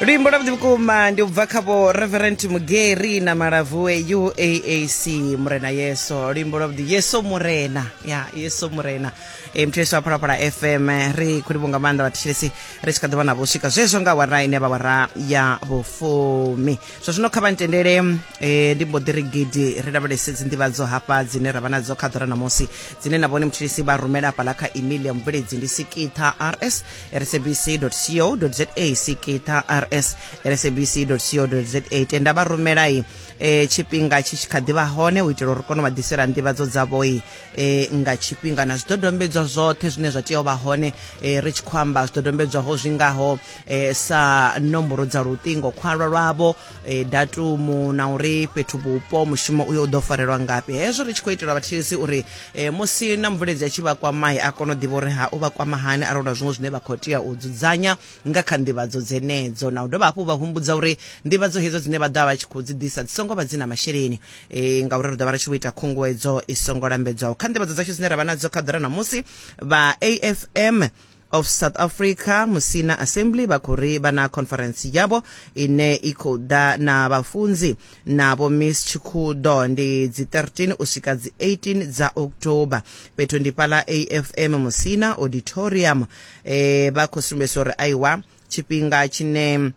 luimbo lwavhuḓi vhukuma ndi u bva kha vho reverend mugeri na malavue uaac murena yeso luimbo lwavhuḓi yeso murena ya yeso murena e muthu yesu a phalaphala fm ri khou livho nga maanḓa vhathetshelesi ri tshi kha ḓi vha na vho swika zwezwo nga wara ine vha wara ya vhufumi zwa zwino kha vha ntendele um ndi mbo ḓi ri gidi ri lavhelese dzi nḓivhadzo hafha dzine ra vha nadzo kha ḓora ṋamusi dzine na vhone muthelesi vha rumela hafhaḽa kha email ya mubveledzi ndi sikitha rs rsabc.co.za sikita rs rsabc.co.za tenda vha rumelai e, tshifhinga tshi tshi kha ḓi vha hone u itela uri kone u vha ḓisela nḓivhadzo dzavhoi e, nga tshifhinga na zwidodombedzwa zwoṱhe zwine zwa tea u vha hone e, ri tshi khou amba zwidodombedzwaho zwi ngaho e, sa nomboro dza luṱingo khwalwa lwavho e, datumu na uri fhethu vhupo mushumo uyo u ḓo farelwa ngafhi hezwo ri tshi khou itela vhathetshelesi uri e, musi na mubveledzi a tshi vha kwamai a kone u ḓivha uri ha u vha kwama hani arali na zwiṅwe zwine vha khou tea u dzudzanya nga kha nḓivhadzo dzenedzo na u dovha hafhu vha humbudza uri nḓivhadzo hedzo dzine vha ḓo vha vha tshi khou dzi ḓisa dzi songo vha dzi na masheleni e, ngauri ri ḓo vha ri tshi vho ita khunguwedzo i songo lambedzwaho kha nḓivhadzo dzashu dzine ra vha nadzo kha ḓora na musi vha afm of south africa musina assembly vha khou ri vha na conference yavho ine i khou ḓa na vhafunzi na vho miss tshikhudo ndi dzi 13 u swika dzi 18 dza october fhethu ndi fhala afm musina auditorium eh, vha khou sumbedzisa uri aiwa tshifhinga tshine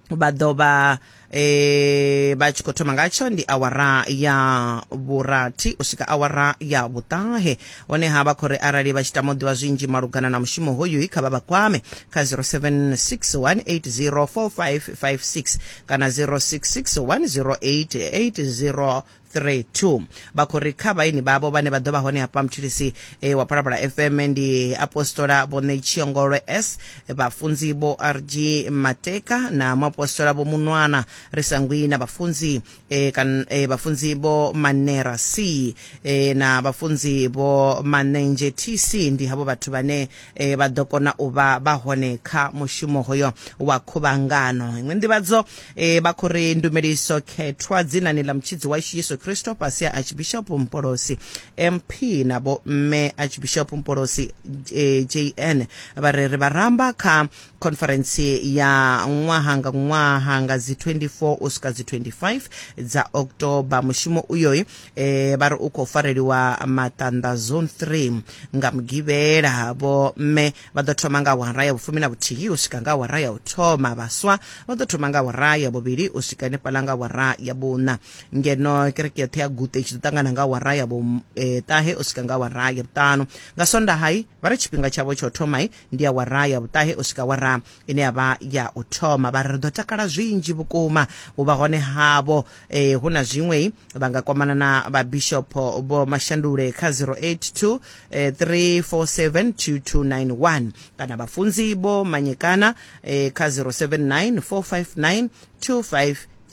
vha ḓo vha e, vha tshi khou thoma ngatsho ndi awara ya vhurathi u swika awara ya vhuṱahe honeha vha khou ri arali vha tshi tama u ḓivha zwinzhi malugana na mushumo hoyu i kha vha vha kwame kha 0761804556 kana 06610880 3 2 vha khou ri kha vhaini vhavho vhane vha ḓo vha hone hafha mutshilisi e, wa phalaphala fm ndi apostola vho ṋetshiyongolwe s vhafunzi vho rg mateka na muapostola vho munwana ri sa ngwi na vhafunzi e, kan, e, vhafunzi vho manera c e, na vhafunzi vho manenzhe tc ndi havho vhathu vhane e, vha ḓo kona u vha vha hone kha mushumo hoyo wa khuvhangano iṅwe nḓivhadzo e, vha khou ri ndumeliso khethwa dzinani ḽa mutshidzi washu yesu kristo fhasi ya archbishop mpolosi mp na vho mme archbishop mpolosi e, jn vha ri ri vharamba kha conference ya ṅwaha nga ṅwaha nga dzi 24 u swika dzi 25 dza october mushumo uyoyi e vha ri u khou fareliwa maṱanḓa zone 3 nga mugivhela vho mme vha ḓo thoma nga awara ya vhufumi na vhuthihi u swika nga awara ya u thoma vhaswa vha ḓo thoma nga awara ya vhuvhili u swika henefhaḽa nga awara ya vhuṋa ngeno kereke yoṱhe ya gute i tshi ḓo ṱangana nga awara ya vhuṱahe u swika nga awara ya vhuṱanu nga swondahai vha ri tshifhinga tshavho tsha u thomai ndi awara ya vhuṱahe u swika awara ine ya vha ya u thoma vha ri ri ḓo takala zwinzhi vhukuma u vha hone havho eh, hu na zwiṅwe vha nga kwamana na vhabishopo vho mashandule kha 082 eh, 3472291 kana vhafunzi vho manyekana eh, kha 079 459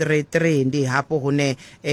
2533 ndi hafho hune eh,